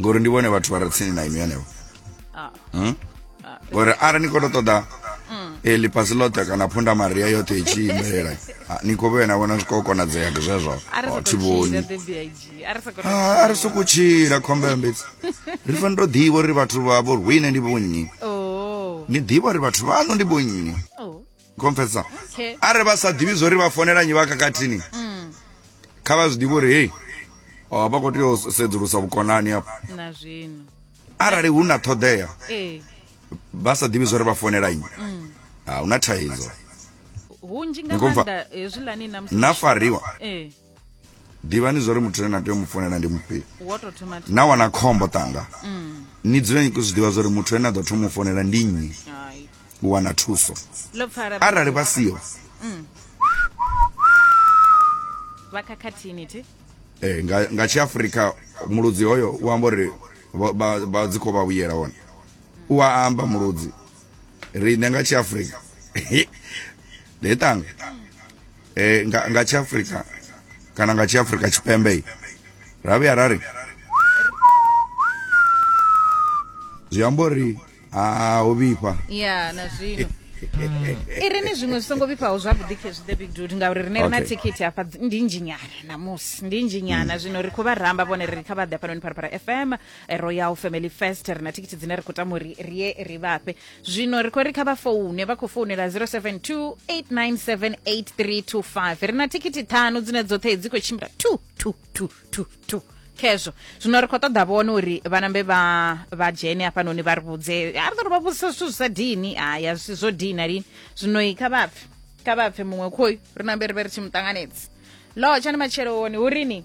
ngori ndi vhone vhathu vha re tsini na inwi henevho ah. hmm? ah. ngori arali ni khou to ṱoḓa mm. e ḽifhasi ḽoṱhe kana phunda maria yoṱhe i tshi imbelela ni khou vhoya na vhona zwi khou konadzea ndi zwezwo thi vhoni a ri sokou tshila khombela mbedzi ri fani to ḓivha uri vhathu vha vho rwine ndi vhonnyi oh. ni ḓivha uri vhathu vhaṋo ndi vhonnyi oh. confesa Okay. arali vha sa ḓivhi zwo ri vha fonela nyi vha kakathini Mm. kha vha zwi ḓivhe uri hei oh, vha khou tea u sedzulusa vhukonani afho na zwino arali hu na ṱhoḓea ee vha sa ḓivhi zwo ri vha fonela nyi Mm. ha hu na thaidzo hunzhi nga Ni khou pfa? maanḓa hezwiḽani na musi na fariwa ee ḓivhani zwo ri muthu ane na tea u mu founela ndi mufhio na wana khombo ṱanga mm. ni dzule ni khou zwi ḓivha zwa uri muthu ane a ḓo thoma u founela ndi nnyi u wana thuso arali vha siho mm. vha khakhathini thi eh nga nga tshi Africa muludzi hoyo u amba uri vha dzi kho vha vhuyela hone u a amba muludzi ri ne nga tshi Africa le tanga eh, nga, nga tshiafrika kana nga tshiafrika tshipembe ra vhuya ra ri zwi amba uri ha ho vhifha ya na zwino i ri ni zwiṅwe zwi songo vhifhaho zwavhuḓi khezwi the big dude ngauri rine ri na Okay. thikhithi hafha dzi- ndi nzhinyana namusi ndi nzhinyana zwino ri khou vha ramba vhone ri kha vha ḓe hafhanoni pharapara fm eh, royal family fest ri na thikhithi dzine ri khou tama uri ri ye ri vhafhe zwino ri khou ri kha vha foune vha khou founela 072 897 ri na thikhithi ṱhanu dzine dzoṱhe dzi khou tshimbila 2 2 2 2 2 khezvo zwino ri khou ṱoḓa vhone uri vhanambe vha vha dzhene hafhanoni vha ri vhudze a ri ḓo ri vha vhudzisa zwithu zwi sa dini haya zwisi zwo dina lini zwino i kha vhapfe kha vhapfe muṅwe khoyu ri nambe ri vhe ri tshi mu ṱanganedzi lotsha ni matsheloni hu rini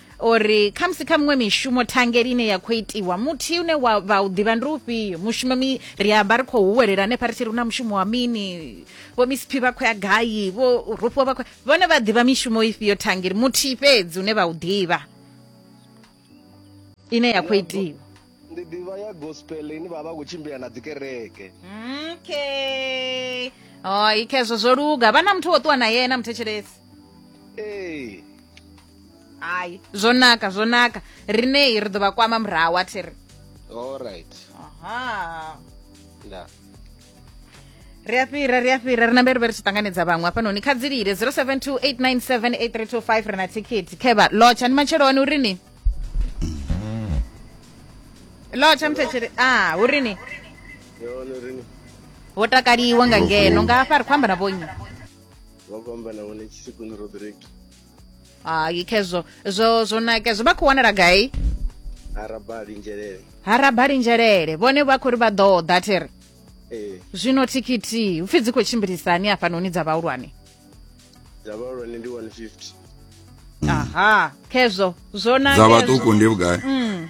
uri khamusi kha miṅwe mishumo thangeli ine ya khou itiwa muthihi une wa vha u ḓivha ndi ufhio mushumo mi ri amba ri khou huwelela hanefha ri tshi ri na mushumo wa mini vho misiphi vha khou ya gai vho rufhiwa vha khou vhone vha ḓivha mishumo ifhio thangeli muthihi fhedzi une vha u ḓivha ine ya khou itiwa ndi ḓivha ya gospel ine vha vha khou tshimbila na dzikereke okay oh ikhezwo zwo luga vha na muthu wo ṱuwa na yena muthetshelesi ee hayi zwo naka zwo naka rineyi ri ḓo vha kwama murahu a thiri allright aha nda ri a fhira ri a fhira ri nambe ri vhe ri tshi ṱanganedza vhaṅwe hafhanoni kha dzi lile 0728978325 ri na thikhithi khevha lotsha ndi matsheloni uri ni lotsha mthetshele a uri ni yone rini wo takaliwa nga ngeno nga hafha ri khou amba na vhonyi vha khou amba na vhone tshisekoni rodrick hayi khezwo zwo zwo nake zwo vha khou wanala gai harabali njelele harabali njelele vhone vha khou ri vha ḓo ḓa thiri ee zwino thikhithi upfi dzi khou tshimbilisani hafhanoni dza vhahulwane dza vhahulwane ndi 150 aha khezwo zwo nake dza vhaṱuku ndi vhugai mm.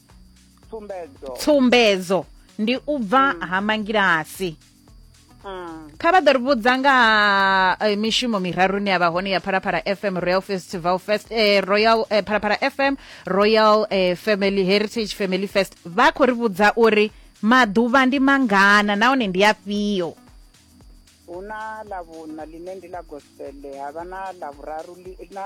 tsumbedzo tsumbedzo ndi u bva mm. ha mangilasi mm. kha vha ḓo ri vhudza nga eh, mishumo miraru ni ya vha hone ya phalaphala fm royal festival fest eh, royal eh, phalaphala fm royal eh, family heritage family fest vha khou ri vhudza uri maḓuvha ndi mangana nahone ndi afhio hu na ḽa vhuṋa ḽine ndi ḽa gospele ha vha na ḽa vhuraru na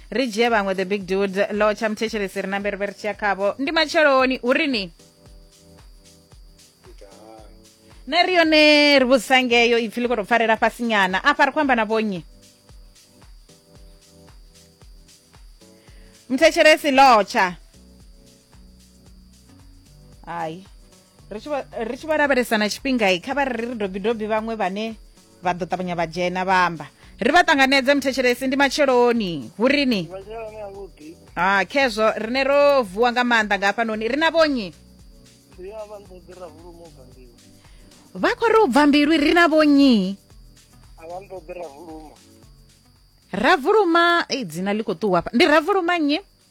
ri dzhie vhaṅwe the big dude lo tsha muthetshelesi ri na mberi veri tshiya khavho ndi matsheloni hu ri ni na ri yone ri vhudzisa ngeyo ipfi ḽi khou tou pfarela fhasi nyana afha ri khou amba na vhonnyi muthetshelesi lotsha hayi ri tshi vha- ri tshi vho lavhelesa na tshifhinga i kha vha ri ri dobi dobi vhaṅwe vhane vha ḓo ṱavhanya vha dzhena vha amba ri vha ṱanganedze muthetshelesi ndi matsheloni hu rini vhadzhelane avhuḓi ha khezwo rine ro vuwa nga maanḓa nga hafhanoni ri na vhonyi ndi a vha nḓoḓi rahulumo u bva mbilu vha khou ri u bva mbilu ri na vhonyi a vha nḓoḓi rahulumo ravuluma ei dzina ḽi khou ṱuwa hafha ndi ravuluma nnyi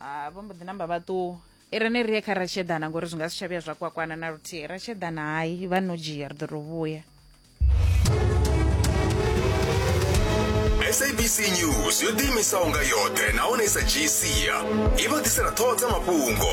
ha vho mbo ḓi namba vha ṱuwa i re ne ri ye kha ratshedana ngori zwi nga si tsha vhuya zwa kwakwana na luthihi ratshedana hayi vha no dzhia ri ḓo to vhuya sabc news yo ḓiimisaho nga yoṱhe nahone i sa dzhii sia i vha ḓisela ṱhoho dza mafhungo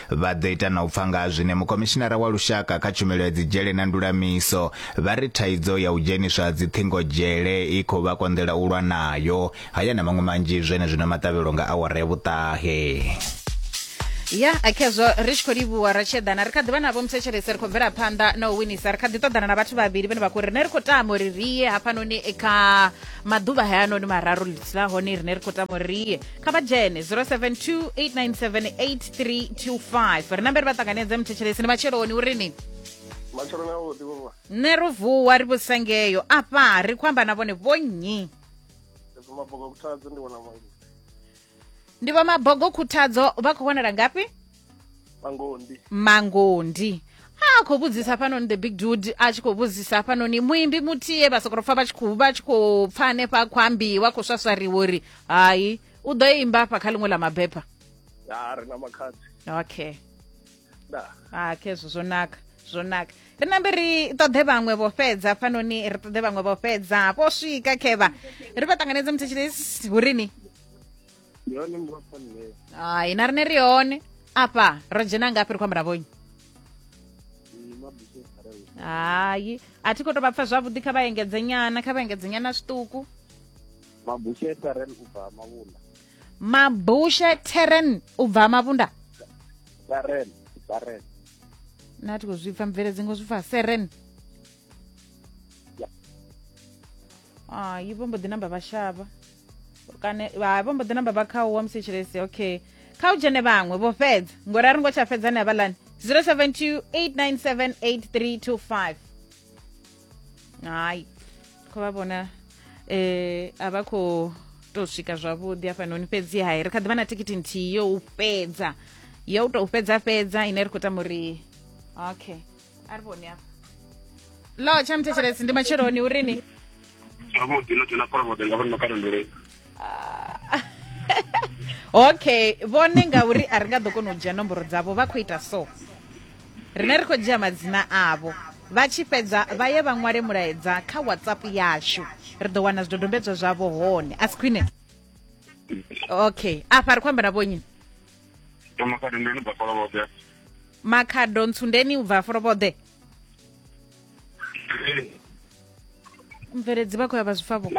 Vha ḓo ita na u pfa nga ha zwine mukomishinara wa lushaka kha tshumelo ya dzidzhele na ndulamiso vha ri thaidzo ya u dzheniswa ha dziṱhingo dzhele i khou vha konḓela u lwa nayo. Haya na maṅwe manzhi zwenezwino maṱavhelo nga awara ya vhuṱahe. ya akhezwo ri tshi khou livhuwa ra tshiedana ri kha ḓivha navho muthetshelesi ri khou bvela phanḓa na u winisa ri kha ḓi ṱoḓana na vhathu vhavhili vhene vha khou rine ri khou tama uri riye hafhanoni kha maḓuvha hayanoni mararu ḽitshila hone rine ri khou tama uri riye kha vha dzhene 072 897 325 ri na mbere vha ṱanganedze muthetshelesi ni matsheloni uri ni matsheloni avhuḓi vhuvha nṋe ro vuwa ri vhusengeyo afha ri khou amba na vhone vho nnyi mabogo khuthadzo ndi vhona mangoni ndi vho mabogo khuthadzo vha khou wanala ngafhi mangondi mangondi a khou vhudzisa hafhanoni the big dude a tshi khou vhudzisa hafhanoni muimbi muthiye vha sokoro pfa vha tshi khou vha tshi khou pfa hanefha khou ambiwa khou swaswariwa uri hai u ḓo imba afha kha ḽiṅwe ḽa mabepha ha ri na makhadzi okay da ha khezwo zwo naka zwo naka ri nambe ri ṱoḓe vhaṅwe vho fhedza fanoni ri ṱoḓe vhaṅwe vho fhedza vho swika khevha ri vha ṱanganedze muthetshilesi hurini yone mbofanile hai na rine ri hone afha ro dzhena ngafhi ri khou amba na vhonyi hai a thi khou tou vha pfa zwavhuḓi kha vha engedze nyana kha vha engedze nyana zwiṱuku mabushe sarel u bva mavhula mabushe terren u bva mavhunda saren saren na ti khou zwi pfa mvele dzingo zwi pfa seren ah, yi vho mbo ḓi namba vha shavha kana vha vho mbo ḓi namba vha kha u wa musi tshelesi okay kha u dzhene vhaṅwe vho fhedza ngori a ri ngo tsha fhedza ni havhalani 072 897 8325 hai kho vha vhona eh a vha khou tou swika zwavhuḓi hafhanoni fhedzi hai ri kha ḓi vha na tikiti nthihi yo u fhedza yo u tou fhedza fhedza ine ri khou tama uri okay a ri vhoni hafha lo tsha muthetshelesi ndi matsheloni urini zwavhuḓi no dzhena phoromode nga vhonno kalondoleni ah. okay vhone ngauri a ri nga ḓo kona u dzhia nomboro dzavho vha khou ita so rine ri khou dzhia madzina avho vha tshi fhedza vha ye vha ṅwale mulaedza kha whatsapp yashu ri ḓo wana zwidodombedzwa zwavho hone a si khwine okay afha ri khou amba na vhonyi makhado ntsundeni u bva folovhoḓe mveredzi vha khou ya vha zwi pfa vho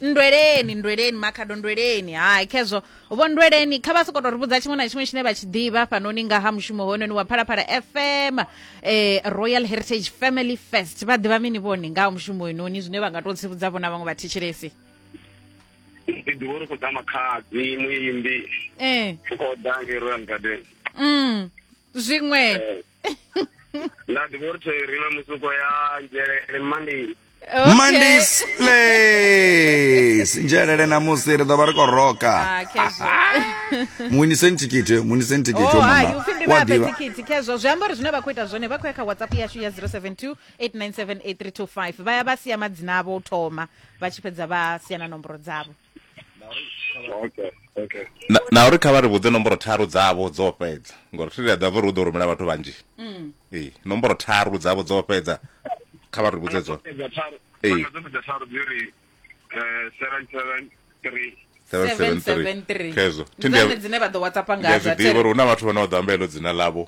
nndweleni nndweleni makhado nndweleni hai khezwo vho nndweleni kha vha soko to ri vhudza tshiṅwe na tshiṅwe tshine vha tshi ḓivha fhanoni nga ha mushumo hoyononi wa phalaphala fm eh, royal heritage family fest vha ḓivha mini vhone nga ha mushumo hoyononi zwine vha nga to tsivhudza vhona vhaṅwe vhathetshelesi ndi ḓivha uri khou ḓa makhadzi muimbi eh. u khou ḓa ngei royal garden mm. zwiṅwe Eh, nda ḓivha uri theri na musuko ya nzhelele mondays Okay. mondays place nzhelele namusi ri ḓo vha ri khou roka Ah, khezwo. muniseni thikhithi muniseni thikhithi Oh, wa hai, mama. upfi ndi Wa vhape ḓivha. thikhithi khezwo zwi amba uri zwine vha khou ita zwone vha khou ya kha whatsapp yashu ya 072 897 8325 vha ya vha sia madzina avho u thoma vha tshi fhedza vha sia na nomboro dzavho okay okay na, na uri kha vha ri vhudze nomboro tharu dzavho dzo fhedza ngori thi ri a ḓivha uri u ḓo rumela vhathu vhanzhi mm. ee nomboro tharu dzavho dzo fhedza kha vha ri vhudze dzone ee khezo zwiḓivha uri hu na vhathu vhane vha ḓo amba heḽo dzina ḽavho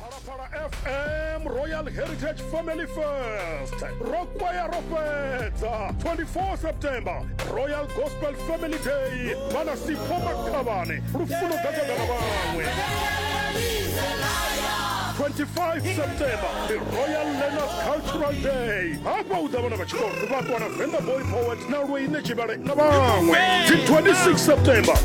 phalaphala fm royal heritage family fest rokwaya ro fhedza 24 september royal gospel family day vhana sipho makhavhane lufuno gagagana vhaṅwe 25 september the royal learners cultural day hafha u ḓa vhana vha tshikolo vhakwana venda boy poet na lweine tshivhale na vhaṅwe 26 september